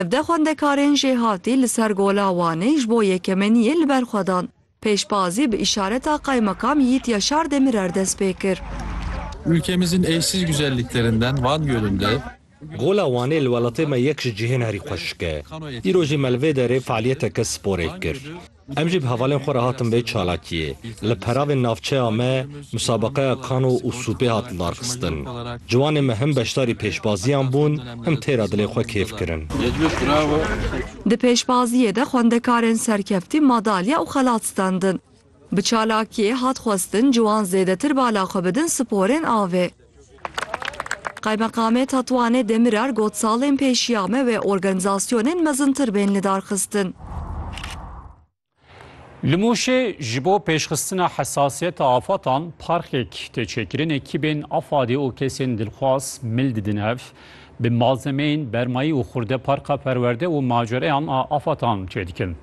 Evde xwendekarên jêhatî li ser Gola Wanê ji bo yekemeniyê li ber xwe dan. Pêşbazî bi îşareta Kaymakam Yiğit Yaşar Demirer dest pê kir. Ülkemizin eşsiz güzelliklerinden Van Gölü'nde, Gola Wanê li welatê me yek ji cihên herî xweşik e. Îro jî me li vê derê fealiyeteke sporê kir. Em jî bi hevalên xwe re hatin vê çalakiyê. Li peravên navçeya me musabaqeya kano û sûpê hat lidarxistin. Ciwanên me him beşdarî pêşbaziyan bûn, him têra dilê xwe kêf kirin. Di pêşbaziyê de xwendekarên serkeftî madalya û xelat standin. Bi çalakiyê hat xwestin ciwan zêdetir bala xwe bidin sporên avê. Qaymeqamê Tetwanê Demirer got salên pêşî ya me wê organîzasyonên mezintir bên lidarxistin. Li Mûşê ji bo pêşxistina hesasiyeta afatan parxek tê çêkirin, ekîbên AFAD'ê û kesên dilxwaz mil didin ev, bi malzemeyên bermayî û xurde parka perwerde û macereyan a afatan çêdikin.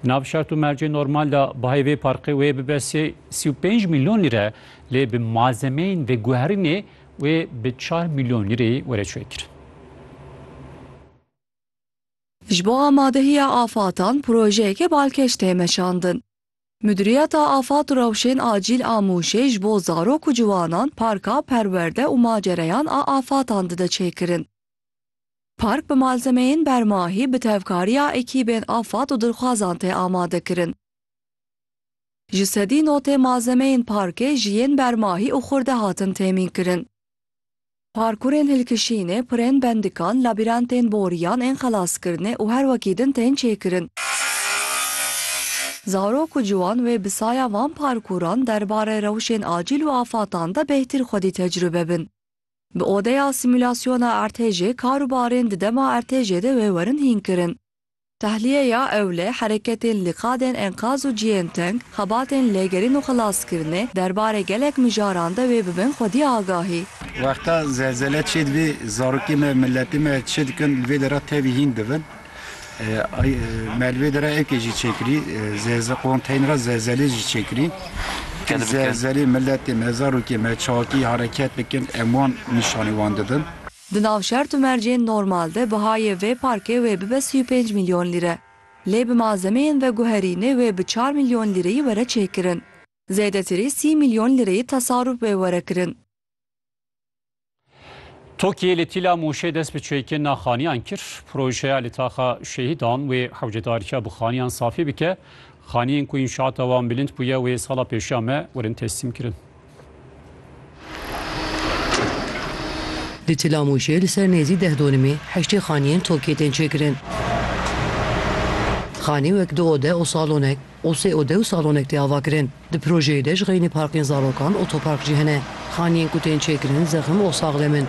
Di nav şert û mercê normal de bahê vê parkê wê bibe sê û pênc milyon lîre, lê bi malzemeyên veguherînê wê bi çar mîlyon lîreyê were çêkirin. Ji bo amadehiya afatan projeyeke balkêş tê meşandin. Mudiriyeta Afat û Rewşên Acîl a Mûşê ji bo zarok û ciwanan parka perwerde û macereyan a afatan dide çêkirin. Park bi malzemeyên bermahî bi tevkariya ekîbên afat û dilxwazan tê amadekirin. Ji sedî notê malzemeyên parkê ji yên bermahî û xurde hatin têmînkirin. Parkurên hilkişînê, pirên bendikan, labirentên boriyan ên xelaskirinê û her wekî din tên çêkirin. Zarok û ciwan wê bi saya van parkuran derbarê rewşên acîl û afatan de bêhtir xwedî tecrube bin. Bi odeya simulasyona ertêjê kar û barên di dema ertêjê de wê werin hînkirin. Tahliyeya ewle, hereketên li qadên enqaz û cihên teng, xebatên lêgerîn û xelaskirinê, derbarê gelek mijaran de wê bibin xwedî agahî. Wexta zelzele çê dibî, zarokên me, miletên me çi dikin, li vê dera tevî hîn dibin. Me li vê dera evkê jî çêkirî, konteyner a zelzelê jî çêkirî. Kir zelzelê miletê me, zarokê me çakî hereket bikin, em wan nîşanî wan didin. Di nav şert û mercên normal de bihayê vê parkê wê bibe sî û pênc milyon lîre. Lê bi malzemeyên veguherînê wê bi çar milyon lîreyî were çêkirin. Zêdetirî sî milyon lîreyî tesarûf wê were kirin. Tokiyê li Tîla Mûşê dest bi çêkên naxaniyan kir. Projeya li taxa şehîdan wê hewcedarîya bi xaniyan safî bike. Xaniyên ku înşaata wan bilind bûye wê sala pêşiya me werin teslîmkirin. Di Tilamûşê li ser nêzî deh donimê heştê xaniyên tokê tên çêkirin. Xanî wek du ode û salonek û sê ode û salonek tê avakirin. Di projeyê de ji xeynî parkên zarokan, otopark jî hene. Xaniyên ku tên çêkirin zexim û saxlem in.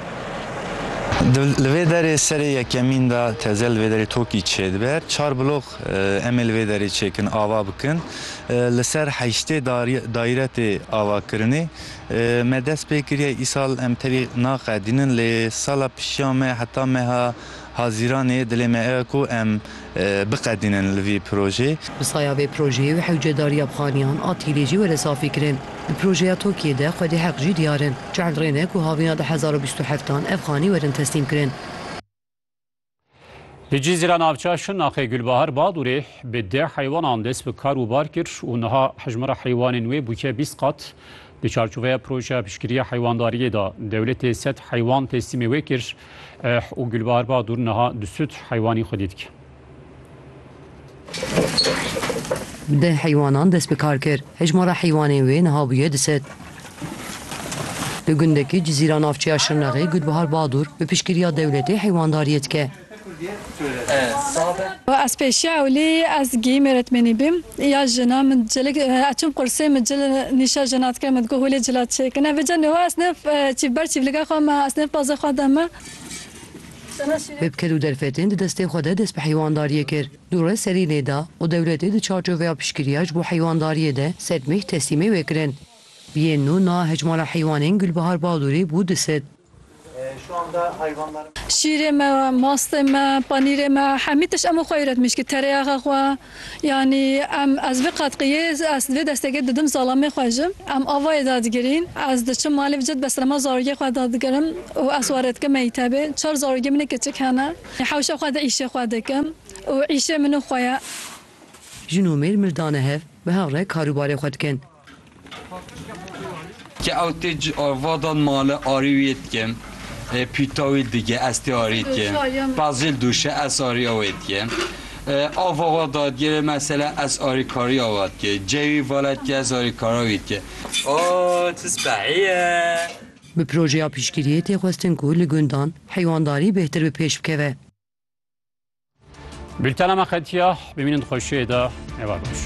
Di li vê derê serê yekemîn de teze li vê derê tokî çêdibe. Çar blox Emê li vê derê çêkin ava bikin. Li ser heştê dayre tê avakirinê. Me dest pê kiriye îsal em tevî naqedînin lê sala pişiya me heta meha Hazîranê dilê me ew e ku em biqedînin li vî projeyê. Bi saya vê projeyê û hewcedariya bixaniyan a tîrê jî were safî kirin. Di projeya Tokiyê de xwedê heq jî diyar in. Çend rê ne ku havîna du hezar û bîst û heftan ev xanî werin teslîm kirin. Li Cîzîra navça Şirnaxê Gulbahar Badûrê bi deh heywanan dest bi kar û bar kir û niha hejmara heywanên wê bûye bîst qat. Di çarçoveya projeya piştgiriya heywandariyê de dewletê sed heywan teslîmê wê kir eh, û Gulbahar Badûr niha du sud heywanî xwedî dike. Deh heywanan dest bi kar kir. Hejmara heywanên wê niha bûye du sed. Li gundekî Cizîra navçeya Şirnexê Gulbihar Badur bi piştgiriya dewletê heywandariyê dike. Ez pêşiya ewlê ez gihîm êretmenî bîm ya jina min cilek ez çûm qursê min cil nîşa jina dike min digot holê cila çêkine vêca niha ez nêf çî ber çîvliga xwe me ez nêf baze xwe de me. Bi bikil û derfetên di destê xwe de dest bi heywandariyê kir. Dûre serî lê da û dewletê di çarçoveya piştgiriya ji bo heywandariyê de sedmeh teslîmê wê kirin. Bi yên nû nava Hejmara Heywanên Gulbihar Balûrê bû du sed. Şîrê me, mastê me, panîrê me hemî tişt em û xwe îro dimîşkî. Terêyaxa xwe. Yanî em ez vê qatqiyê ez vê destekê didim zalamê xwe ji em avayê da digirîn. Ez diçim malê vijî dibe sirema zarokê xwe da digirim û ez ware dikim mektebê. Çar zarokê min ê kiçik hene. Hewşa xwe di îşê xwe dikim û îşê min û xwe ye. Jin û mêr mirdane hev bi hev re karûbarê xwe dikin. Ke ew tê ci ava dan male arî wê dikim. E, pîta wê dige ez tê arî dikim. Pezil dûşe ez arîya wê dikim. E, ava wa dadgêrê mesela ez arîkarîya wa dike. Cewî vala dike ez arîkara wî dike. O çi spehî ye! Bi projeya piştgiriyê tê xwestin ku li gundan heywandarî bêhtir bi pêş bikeve. Bültena me qetiya, bimînin di xweşiyê de, eva baş.